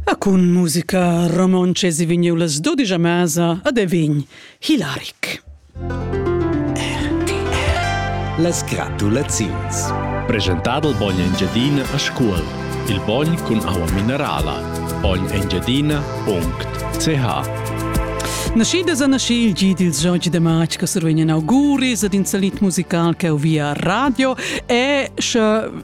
A cun musica romontscha si vegniu las dudisch a mesa ad Evin Hilaric. Las gratulaziuns. Presentado il bogn Engiadina a scuol. Il bogn cun aua minerala. Bognengiadina.ch Nascidas a nasci il gi dil Giorgi de March che survegnan auguris ad in salit musical che via radio e sche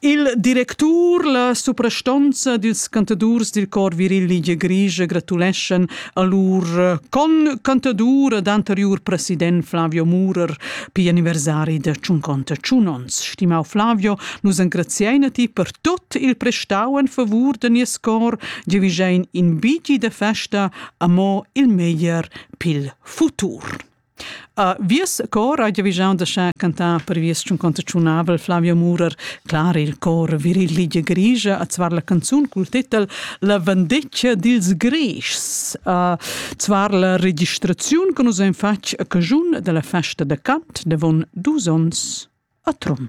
Il directur, la suprastonza dils cantadurs dil cor viril Ligie Grigia gratuleschan a lur con cantadur ed anteriur president Flavio Murer pi anniversari da Tschunconta Tschunons. Stimau Flavio, nus engraziein a ti per tot il prestau en favur de nies cor, giavigein in bigi de festa amo il meglier pil futur. A vies cor hai giavischau da schar cantar per vies tschunconter tschunavel Flavio Murer, clar il cor viril ligia grigia a zvar la canzun cul titel La vendeccia dils Grischs, a zvar la registraziun che nus ein fatg a cajun dalla festa da cant davon dus onns a Trun.